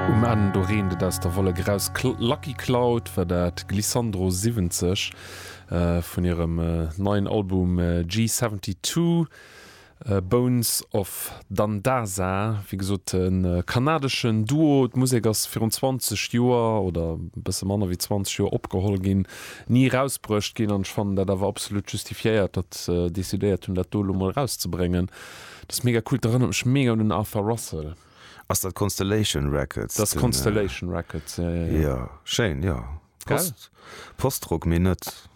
Um Enn do reent et aus der Wollek eraus, Lucky Cloud war dat, Glissandro 70 vun hirem neien Album G72, Bones of Dandaza, wéi gesot e kanadeschen Duo. D'Musek ass virun 20 Joer, oder e bësse manner wéi 20 Joer, opgeholl ginn, ni erausbruecht ginn, an ech fannen dat awer absolut justifiéiert, datt se decidéiert hunn dat do elo mol erauszebréngen. Dat ass mega cool, dat erënnert mech mega un den Arthur Russell. Ass dat Constellation Records? Dat ass Constellation Records, jo, jo, jo. Jo, schéin, jo. Gell? Postrock, mee net.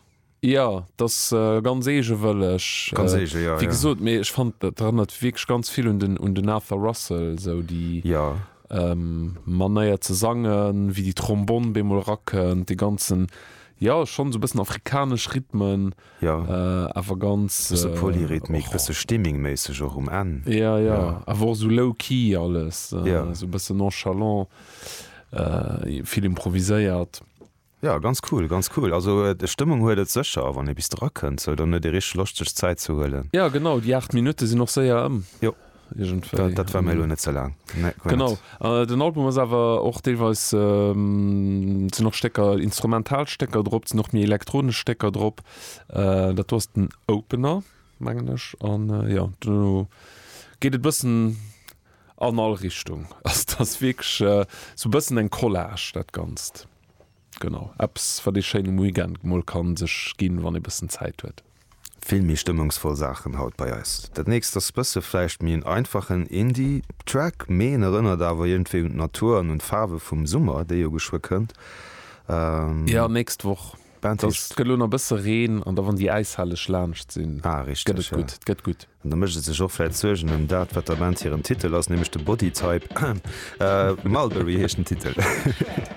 Jo, dat ass ganz eegewëlleg. Ganz eege, jo, jo. Wéi gesot, mee ech fannen, dat erënnert wierklech ganz vill un den, un den Arthur Russell, esou déi. Jo. Manéier ze sangen, wéi déi Trombonn bemol erakënnt, dee ganzen, jo, schonn esou e bëssen afrikanesch Rhythmen. jo awer ganz bësse Polyrythmik bësse Stimming méisseg och um Enn jo jo awer och sou low key alles sou bësse nonchalant vill improviséiert. Jo ganz cool ganz cool also Stëmmung huet et sécher wann ee bis dra kënnt sou dann huet ee richteg Loscht sech Zäit ze huelen. Jo genau déi 8 Minutte sinn och séier ëm. Iergendwéi. Dat war mir elo net ze laang. Genau. Den Album ass awer och deelweis, sinn och Stécker, instrumental Stécker drop, sinn och méi elektronesch Stécker drop. Dat do ass den Opener, mengen ech. An jo, duerno geet et e bëssen an all Richtung. Ass ass wierklech esou e bëssen eng Collage dat Ganzt. Genau, eppes wat ee schéin um Weekend mol kann sech ginn wann ee bëssen Zäit huet. Vill méi stëmmungsvoll Saachen haut bei eis. Dat nächst ass bësse vläicht méi en einfachen Indie Track, mee en erënnert awer iergendwéi un d'Natur an un d'Faarwe vum Summer, dee jo geschwë kënnt. Jo, nächst Woch. Band heescht. Et gëtt elo nach bësse Reen an da wann déi Äishalleg laanscht sinn, Ah, gëtt richteg, et ja. gutt. Et gëtt gutt. An da mécht et sech och vläicht Suergen ëm dat wat der Band hiren Titel ass, nämlech de Bodytype. Mulberry heescht den Titel.